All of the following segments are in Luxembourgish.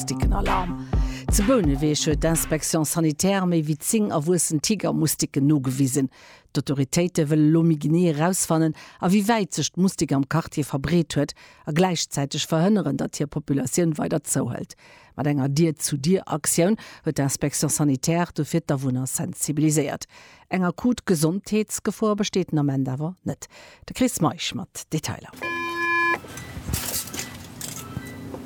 Moustiquen Alarm. Zu Bouneweg huet d'Inspection Sanitaire méi wéi 10 erwuessen Tigermoustiquen nogewisen. D'Autoritéite wëllen elo méi genee erausfannen, a wéi wäit sech d'Moustik am Quartier verbreet huet, a gläichzäiteg verhënneren, datt hir Populatioun weider zouhëlt. Mat enger Dier-zu-Dier-Aktioun huet d'Inspection Sanitaire dofir d'Awunner sensibiliséiert. Eng akut Gesondheetsgefor besteet den Ament awer net. De Chris Meisch mat Detailer.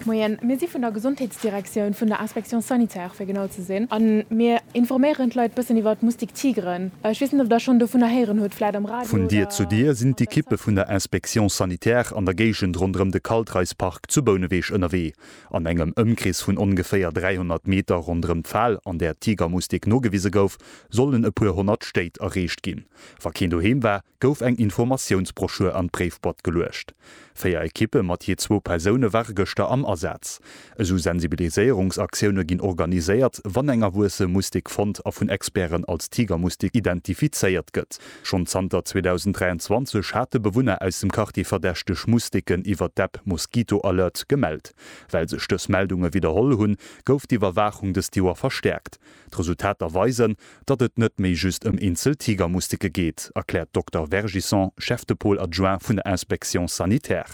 Moien, mir si vun der Gesondheetsdirektioun, vun der Inspection sanitaire fir genau ze sinn, a mir informéieren d'Leit bëssen iwwer d'Moustique tigre. Ech weess net, ob Der schonn dovunner héieren hutt, vläit am Radio oder Vun Dier zu Dier sinn d'Ekippe vun der Inspection sanitaire an der Géigend ronderëm de Kaltreispark zu Bouneweg ënnerwee. An engem Ëmkrees vun ongeféier 300 Meter ronderëm d'Fal, an där Tigermustik nogewise gouf, sollen e puer honnert Stéit erreecht ginn. Wa keen doheem war, gouf eng Informatiounsbroschür an d'Bréifboîte geluecht. Véier Ekippe mat jee zwou Persoune ware gëschter am Asaz. Esou Sensibiliséierungsaktioune ginn organiséiert, wann eng erwuesse Mustik fonnt a vun Experten als Tigermustik identifizéiert gëtt. Schonn zanter 2023 hate Bewunner aus dem Quartier verdächteg Musteken iwwert d'App Mosquito Alert gemellt. Well sech dës Meldunge widderholl hunn, gouf d'Iwwerwaachung dëst Joer verstäerkt. D'Resultater weisen, datt et net méi just ëm eenzel Tigermusteke geet, erkläert d'Dokter Vergisson, Chef de Pôle adjoint vun der Inspection Sanitär.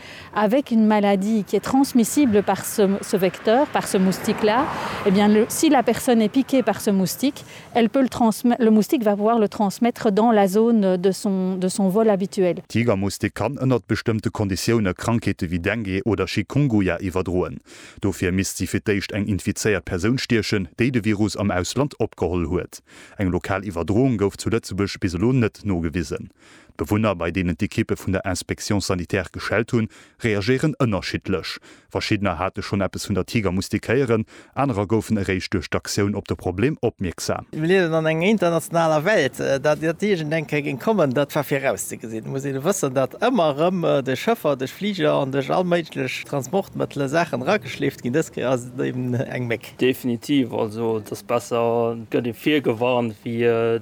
Avec une maladie qui est transmissible par ce ce vecteur, par ce moustique là, eh bien le si la personne est piquée par ce moustique, elle peut le transmet le moustique va pouvoir le transmettre dans la zone de son de son vol habituel. Tigermoustik kann ënnert bestëmmte Konditioune Krankheete wéi Dengue oder Chikunguya iwwerdroen. Dofir misst si fir d'éischt eng infizéiert Persoun stiechen, déi de Virus am Ausland opgeholl huet. Eng lokal Iwwerdroung gouf zu Lëtzebuerg bis elo net nogewisen. D'Bewunner, bei deenen d'Ekippe vun der Inspection sanitaire geschellt hunn, reagéieren ënnerschiddlech. Verschiddener hate schonn eppes vun der Tiger mustékéieren, anerer goufen eréischt duerch d'Aktioun op de Problem opmierksam. Mir liewen an enger internationaler Welt. Datt iergend een Denker géing kommen, dat war virauszegesinn. Et muss ee wëssen, datt ëmmer erëm duerch Schëffer, duerch Fliger an duerch all méiglech Transportmëttele Saachen erageschleeft ginn. Dës Kéier ass et eben eng Méck. Definitiv. Also et ass besser, et gëtt ee virgewarnt, wéi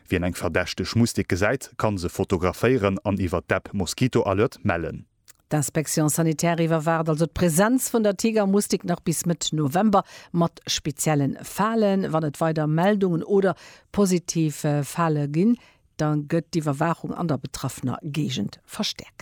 Wien eng verdächteg Mustik gesäit, kann se fotograféieren an iwwer d'App Mosquito Alert mellen. D'Inspection sanitaire iwwerwaacht also d'Presenz vun der Tigermustik nach bis Mëtt November, mat speziellen Falen. Wann et weider Meldungen oder positiv Fale ginn, da gëtt d'Iwwerwaachung an der betraffener Géigend verstäerkt.